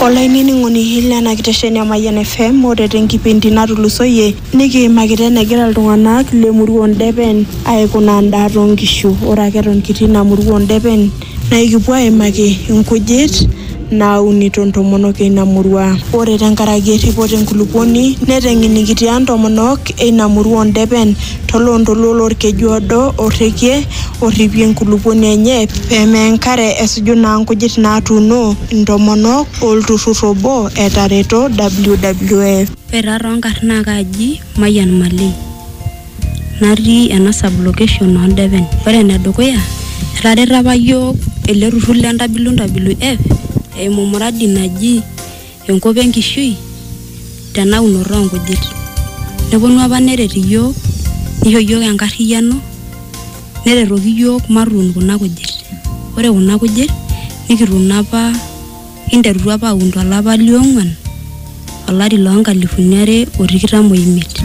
olainining'oni lena kitesheni e Mayian FM ore tenkipindi natulusoyie nikiimakita enegira iltung'anak lemurua Ondepen aikunaa endaa toonkishu ore ake eton kitii ina murua Ondepen naa ikipuo aimaki inkujit naaunito intomonok eina murua ore tenkaraki erripoto enkulupuoni neteng'enikitia intomonok eina murua Ondepen to loontoluo lo lkeju odo o rrekie orripie enkulupuoni enye pee meya enkare esuju naa nkujit naatuuno intomonok o lturrur obo etareto WWF. Ore taa too nkarn naa kaaji Mayian Malei natii ena sub location oo Ndepen. Ore ene dukuya etareto apa iyiook ele turrur le WWF eimu muradi naji enkop enkishui tena unoto oo nkujit. Neponu apa neret iyiook nisho iyiook enkarriyiano neretoki iyiook matuun kuna kujit. Ore kuna kujit nikituuno apa kinterutua apa aun to lapa le ong`uan to lari loo nkalifuni are o tikitam o imiet.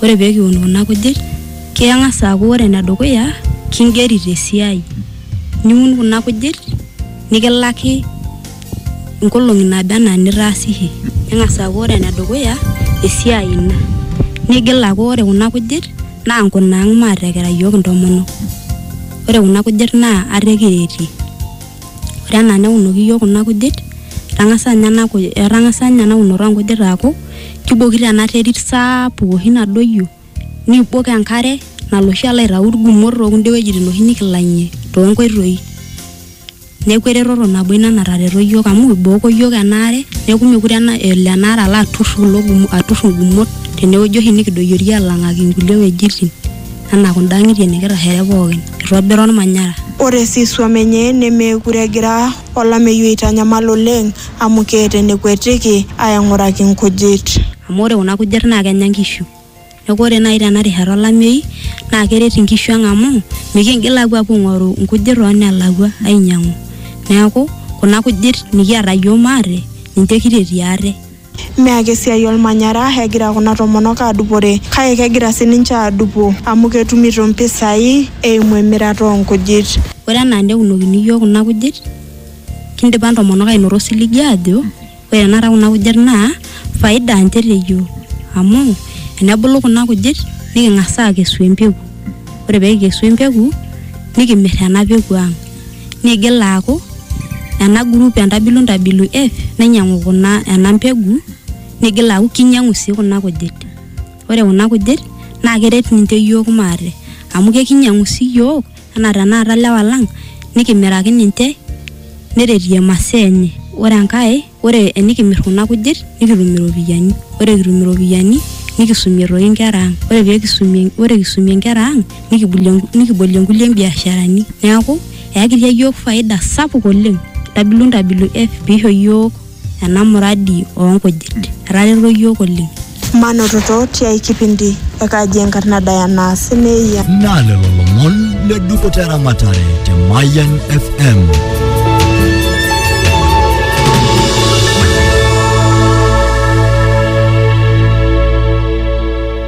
Ore pee kiun kuna kujit keng`as aaku ore ene dukuya king`eri te siai. Niun kuna kujit nikilaki. nkolong'i naaba enaa nitaasishe neng'as aaku ore enedukuya esiai ina nigil aaku ore kuna kujit naa nkunaang maatekira iyiook intomonok ore kuna kujit naa ate kiretie ore enaa neunoki iyiook kuna kujit etang'asa ninye ena kuj etang'asa ninye ena unoto onkujit aaku kibokito ena terit saapuk oshi nadoyio nibok enkare nalo oshi alo aitau irkumot tokunda wuejitin oshi nikilang'ie tonkoitoi. neeku eretoto nabo ina natareto iyiook amu ibooko iyiook enaare neeku mekure ena elo enaare alo aturr kulo gumo aturr ingumot tenewueji oshi nikidoyiorie alang'aki inkulie wuejitin anaa kunda ang'itie nikitashare pookin itobira olmanyara. Ore sii isuam enye nemeekure egira olameyu aitanyamal oleng amu keeta enekuetiki aaing'uraki nkujit. Amu ore kuna kujit naa kenya nkishu. Neaku ore naaji tena rishata olameyu naa keret inkishu ang amu mikiingil aapuo aing'oru inkujit too nelakua ainyiang'u. Neaku kuna kujit nikiata iyiook maate ninche kitetie ate. Mme ake esiai olmanyara egira kuna tomonok aadupore kake kegira sii ninche aadupo amu ketumito impisai eimu emirata oo nkujit. Ore enaa neunokini iyiook kuna kujit kindipa intomonok aanoto osiligi aajo Ore tenakata kuna kujit naa faida ninche te yiok amu tenebulu kuna kujit niking'as aakesu empeku ore pee kikesu empeku nikimirr ena peku ang' niigil aaku ena group e Ntabilu Ntabilu F nainyiang'u kuna ena mbegu niigil aaku kinyiang'u sii kuna kujit, ore kuna kujit naa keret ninche iyiook maate amu kakinyiang'u sii iyiook. anaa tenakata lewa lang nikimiraki ninche neretie masaa enye ore enkae ore enikimirr kuna kujit nikitum iropiyiani ore kitum iropiyiani nikisumie toi inkera ang ore pekisumie ore kisumie inkera ang nikibulie nikibolie nkulie biasharani neeku eyakitia yiok faida sapuk oleng ntabilu ntabilu eeh piisho yiok ena muradi oo nkujit etareto iyiook oleng. Manototo tiai kipindi e Kaji Enkarna Diana Simeia. Naa lelo lomon le dupoto eramatare te Mayian FM.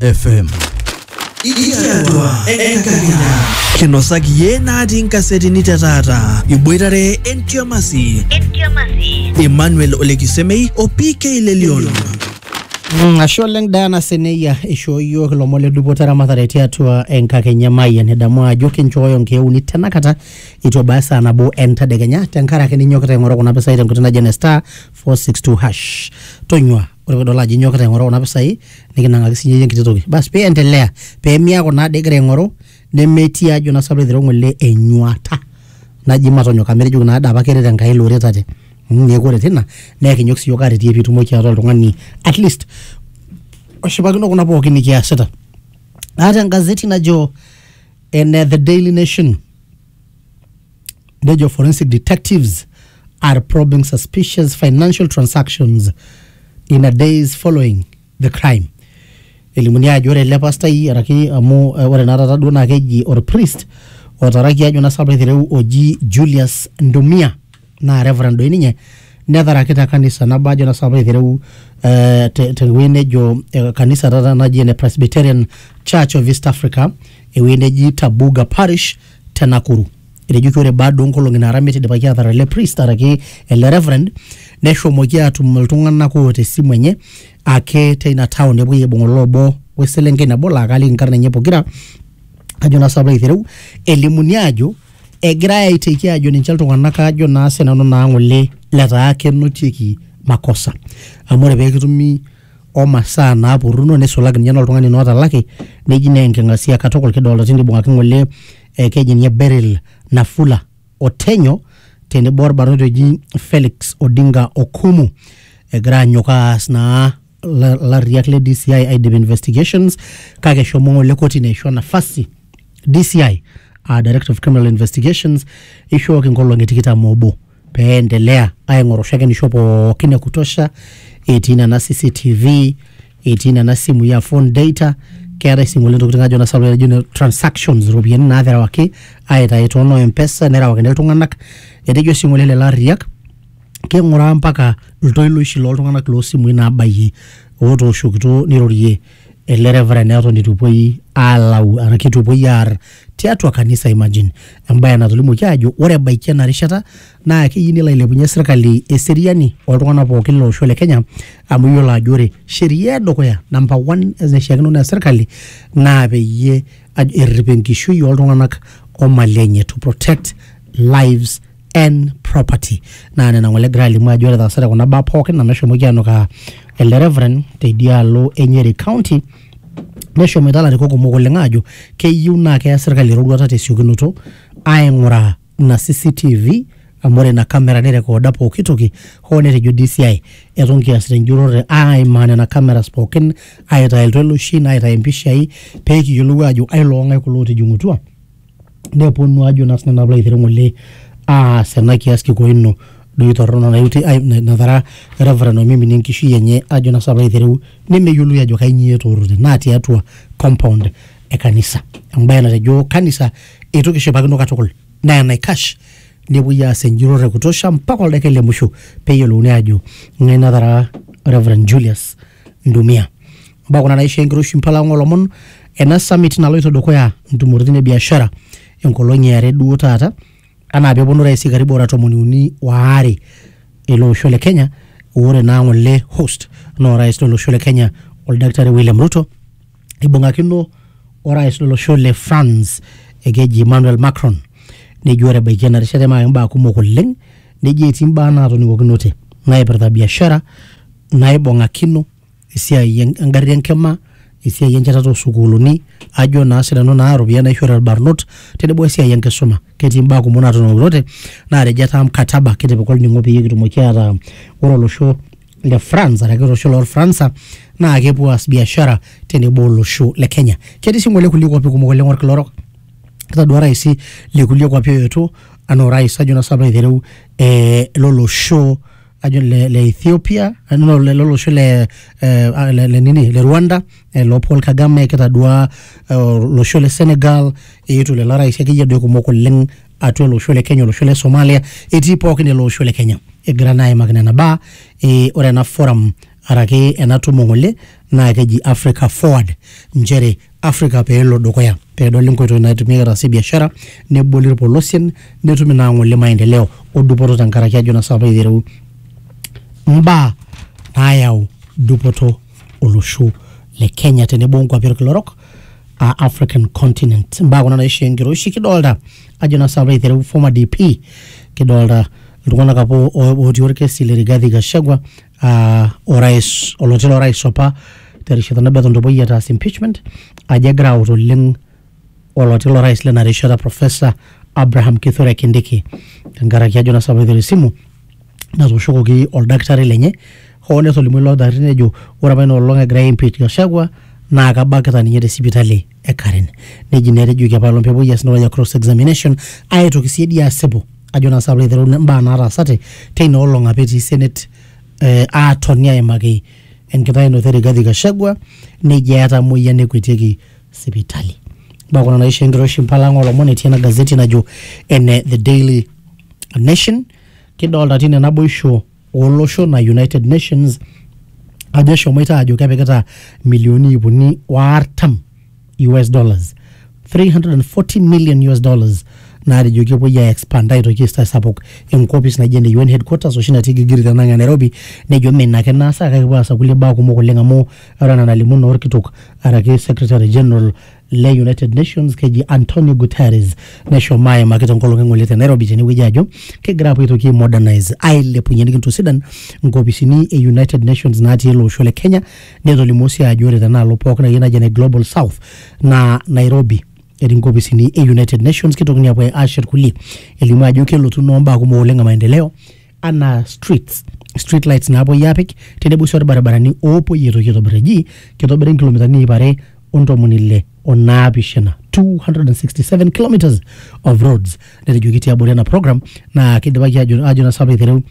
FM. Ikiatua enkakenya. Kinosaki yie natii nkasetini te taata. Iboitare entiamasi. Emmanuel Olekisemei o PK Lelion. Mm, ashe oleng Diana Seneyia ishoo iyiook ilomon le dupoto eramatare tiatua enkakenya emayian edamu ajo kinchooyo nkeek uni tenakata itu ebaya esaa nabo entadekenya tenkaraki ninyokita aing'oru kuna pisai tenkoitoi naji ene star 462 hash tonyua ore pidol ajo inyokita aing'oru kuna pisai nikinang'aki sinyeyie enkiti toki bas piendelea pemiaku naa dii igira aing'oru nemetii ajo naa sinanu piilo aitereu ng'ole enyuata naji matonyok amu etejoki naade apake eret Enkai iloretate mmh neeku ore tina naa ekinyok siyiok aretie pitumoki ataa oltung'ani atleast oshipakino kuna pookin nikiasita aata engazeti najo ene the daily nation. nejo forensic detectives are probing suspicious financial transactions in a days following the crime elimuni ajo ore ele pastai araki amu eh, ore naa taata duo naa keji orpriest otaraki ajo naa sapa aitereu oji Julius Ndumia naa reverend doi ninye netaraki te kanisa nabo ajo naa sapa aitereu eh, te- tewueji nejo eh, kanisa taata naji ene presbyterian church of east africa ewueji neji tabuga parish te nakuru etejoki ore baada onkolong'i naara miet idipaki atar ele priest araki ele reverend neshomoki atum iltung'anak oota esimu enye ake teina town nepuoi aibung olo obo weselenkei nabo laa kaaliki inkarn enye pokira ajo naa sapa aitereu elimuni ajo egirae aiteki ajo ninche iltung'anak ajo naa sinanu naa ng'ole letaa kenotieki makosa amu ore peekitumi omasaa naapurruno nisulaki ninye noltung'ani naa otalaki neji naa enking'asia katukul kidolta tine ibung'aki ng'ole eh, keji ninye Beryl Nafula Otenyo tenebo orbarnoti oji Felix Odinga Okumu egira anyok aas naa larriak le DCI aidip investigations kake eshomo ng'ole kotini aisho nafasi DCI aa Director of Criminal Investigations eishooki nkolong'i tikitam oobo pee endelea aing'oru shakenisho pookin e kutosha etii nena CCTV etii nena simui aa phone data keetae sii ng'ole ntokitin ajo nanu naijo ne transactions iropiyiani naaterewaki aitayu too noo M-pesa nerewakini iltung'anak etejo sii ng'ole lelo arriak king'uraa mpaka iltoiloishi loltung'anak losimui nabayie otooshokito nirorie ele reverend eton itu epuoi alau araki itu epuoi aar tiatua kanisa imagine embaye natolimuoki aajo ore ebaiki ena rishata naa keyieu nelo ailepunyie sirkali eseriani oltung'anak pookin lolosho le kenya amu iyiolo ajo ore sheria edukuya namba one naishiakino nees sirkali naa peyie aj- errip enkishui oltung'anak omali enye to protect lives and property naa nena ng'ole egira alimu ajo ore etaasate kuna baa pookin amu eshomoki anukaa ele reverend teidialo e Nyeri county neshomoita ilarikok kumok oleng aajo keyieu naa keya sirkali eroruata tesiokinoto aing'uraa ina CCTV amu ore ina kamera nirrekooda pooki toki hoo netejo DCI eton kiasita enjurrore aimaa nena cameras pookin aitaa iltoloishin aitaa impishai pekiyiolou aajo ailong'ae kulo otijing'utua neponu ajo naa sinanu alo aitereu ng'ole aas ena kias kikoo ino doi torrono naiuti ai natara Reverend oimiminie enkishui enye ajo naa sinanu alo aitereu nemeyioloi ajo kainyio etoorote naa tiatua compound e kanisa embaye natejo kanisa eitu kishipakino katukul naa enaikash nepuoi aas enjurrore e kutosha mpaka oldaikai le musho peyiolouni ajo ng'ae natara Reverend Julius Ndumia. Mbaa kuna naisho enkiroshi mpala olomon ena summit naloito dukuya ntumoritin e biashara enkolong e are duo taata anaa peponu raisi karibu ora tomoni uni waare ele osho le Kenya ore naa ng'ole host naa orais lolosho le Kenya oldakitari William Ruto ibung'akino orais lolosho le France ekeji Emmanuel Macron nejo ore ebaiki ena rishata emaa imbaa kumok oleng nejo etii imbaa naatoning'okinote naipirta biashara naibung'akino esiai engarri enkima, esiai enchetata osukuuluni, ajo naa sinanu naa iropiyiani naishooyo irbarnot tenebo esiai enkisuma. Ketii imbaa kumok naatotulusoitie naatejo etaa mkataba kitipika olning'o peyie kitumoki ataa ore olosho le France araki olosho lorfransa naa kepuo aas biashara tenebo olosho le Kenya. Ketii sii ng'ole kulie kuapi kumok oleng' olkila orok, etaduaa iraisi le kulie kuapi ooetuo anaa orais ajo naa sinanu piilo aitereu eh lolosho. ajo le, le Ethiopia eh, no, le lolosho le, eh, ah, le, le nini le Rwanda eh, lo Paul Kagame kitadua eh, olosho le Senegal eetuo lelo rais akeyie doi kumok oleng atua olosho le Kenya olosho le Somalia etii pookin ele osho le Kenya egira naa aimaki nena baa eh, ore ena forum araki ena tumo ng'ole naa keji Africa Forward nchere Africa pee elo dukuya pee edoli nkoitoi naitumiai ataasie biashara neboli irpolosien netum ina ng'ole maendeleo o dupoto tenkaraki ajo nasa apa aitereu mbaa naayau dupoto olosho le Kenya tenebo onkuapi orkila orok aa African continent. Mbaa kuna naishoo enkiroshi kidolta ajo nasa apa aitereu former DP kidolta iltung'anak apa o- otii orkesi le Rigathi Gachagua uh, orais oloti lorais opa terishata nabo eton epuoi ataas impeachment ajo egira aut oleng oloti lorais lena rishata professor Abraham Kithure Kindiki tenkaraki ajo nasapaitore esimu natooshokoki oldakitari lenye hoo netolimuo ilo dakitari nejo ore apa ina olong egirai aimpeach Gachagua naa kabakita ninye te sipitali. e Karen neji naa etejoki apailong pepuoi aas entoki naji cross examination aitoki sii dii asipu ajo naa sapulo aiteru imbaa nataasate teina olong apa etii senate eh, aatoni aimaki enkitainoto e Rigathi Gachagua neji eeta emoyian nekuetieki sipitali mbaa kuna naisho enkiroshi impala ang olomon etii ena gazeti najo ene the daily nation kidolta tine naboisho olosho na United Nations ajo eshomoita ajo kepikita milioni iip uni o artam US dollars 340 million US dollars naatejo kepuoi ai expand aitoki aisapuk enkopis naijo ene UN headquarters oshi natii Gilgiri tenang' e Nairobi nejo mee ina ake naasa kake kepuo aas kulie baa kumok oleng' amu ore enaa enalimu naa orkitok araki secretary general le United Nations keji Antonio Guterres neshomo aimaki tenkolong e ng'ole te Nairobi tenewueji ajo kegira apuo aitoki ai modernize ailepunye nikintosidan nkopisini e United Nations natii ele osho le Kenya netolimuo sii ajo ore tenaalo pookin akeyie naji ene Global South naa Nairobi etii nkopisini e United Nations kitokini apuo aashet kulie elimu ajo kelotu noo mbaa kumok oleng e maendeleo anaa streets street lights naapuoi aapik tenebo sii orbaribarani oopuoi aitoki aitobir eji kitobiri nkilomitani iip are ontomoni ile onaapishana 267 kilometers of roads netejoki tiabori ena program naa kidipaki ajo ajo nasa aitereu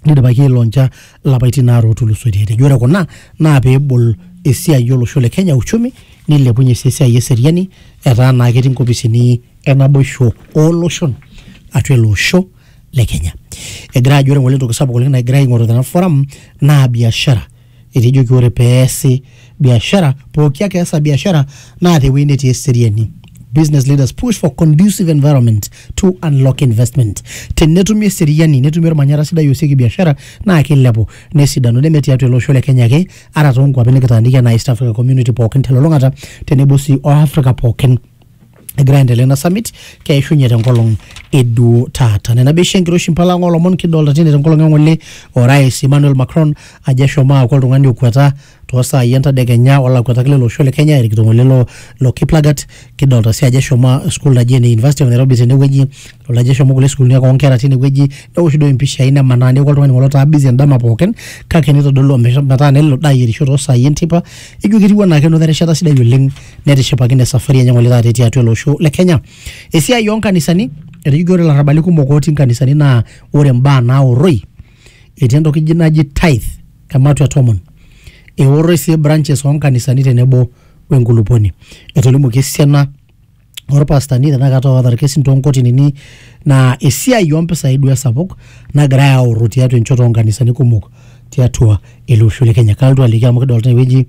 nidipaki ailoncha lapaitin aare otulusoitie etejo ore kuna naa peebol esiai olosho le kenya uchumi nilepunye sii esiai eseriani etaa naa ketii nkopisini enaboisho ooloshon atua ele osho le Kenya. Egira ajo ore ngole entoki sapuk oleng nagira aing'oru tena forum naa biashara. Etejoki ore peesi biashara, pooki ake easa biashara naa tewueji netii eseriani. Business leaders push for conducive environment to unlock investment. Tenetumi eseriani, netumi ormanyara sidai oosieki biashara naa kilepu nesidanu neme tiatua ele osho le Kenya ake ata toonkuapi nikitaaniki enaa East Africa Community pookin telulung'ata tenebo sii o Africa pookin. egira aendelea ina summit keishunye tenkolong eduo taata nena beisho enkiroshi mpala ng'o lomon kidolta tine tenkolong eng'ole orais Emmanuel Macron ajo eshomo aaku oltung'ani okweta toosaai entadekenya olakwetaki lelo osho le Kenya erikito ng'ole lo, lo Kiplagat kidolta sii ajo eshomo school naji ene University of Nairobi tenewueji idolta ajo eshomo kulie sukuulini ake oonkera tinewueji newosh duo impishai nemanaa neeku oltung'ani ng'ole otaa busy endama pookin kake nitodolu ometaa nelo daa ayierisho toosaai enteipa ijo ketiu enaake enoto erishata sidai oleng netishipakine safari enye ng'ole taata etii atua ele osho le Kenya. Esiai oo nkanisani, etejoki ore ilarrabali kumok otii nkanisani naa ore mbaa naorroi, etii entoki ji naji tithe ematua e tomon. Eorroi sii branches oo nkanisani tenebo we nkuluponi. Etolimuoki esiana orpastani tenakata oota irkesin too nkotinini naa esiai oo mpisai duo esapuk nagirai aorro tiatua enchoto oo nkanisani kumok tiatua ele osho le Kenya. Kalotu aliki amu kidolta tene wueji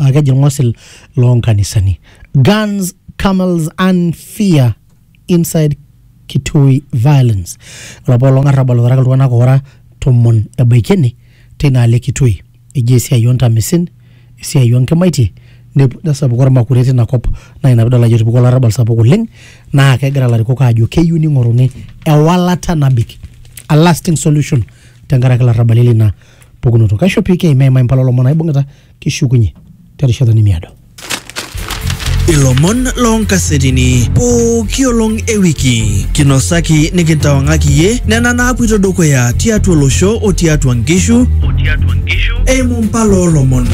aa keji ilng'osil loo nkanisani guns camels and fear inside kitui violence ore apa olong arrabal otaraka iltung'anak oora tomon ebaiki ene teina alo e kitui eji esiai ontamisin esiai onkimaitie nep- nesapuku ormakure tina kop naa ina pidol ajo etupukuo olarrabal sapuk oleng naa kegira ilarikok aajo keyieu ning'oruni ewalata nabik a lasting solution tenkaraki ilarrabali lina pukunoto kaisho pii keimaimai mpala olomon aibung'ita kishukunye terishata nimiado ilomon loonkasetini pooki olong e wiki kinosaki nikintawang'aki iye nena naapuito dukuya tiatua olosho o tiatua nkishu eimu mpala oolomon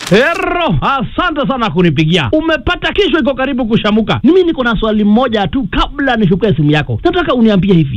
Hero, asante sana kunipigia. Umepata kesho iko karibu kushamuka. Mimi niko na swali moja tu kabla nichukue simu yako. Nataka uniambie hivi.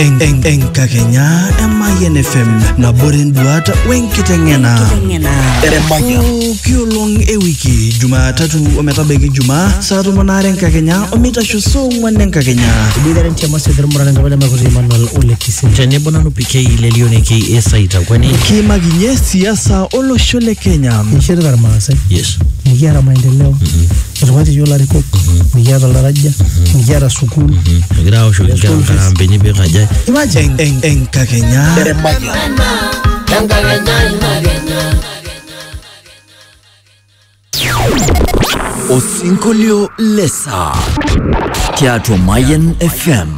En- en- enkakenya emayian fm nabore nduat wenkiteng'ena pooki olong ewiki jumatatu ometabaiki jumaa saa tomon aare enkakenya omeitasho saa ong'uan enkakenya Ibidare nchama sidhir murana ngabala makuti Emmanuel Ole Kisim. tenebo nanu PK lelioneki esaita kwani kiimakinye siasa olosho le kenya Nishirita irmaasai. yes Nikiata maendeleo. Etung'uatie iyiook ilarikok, mikiata oltaraja, mikiata sukuul. Egira aoshoki inkera nkarambeni pee ikaja. Imagine en- en- enkakenya. Osinkolio lesaa tiatua Mayan FM.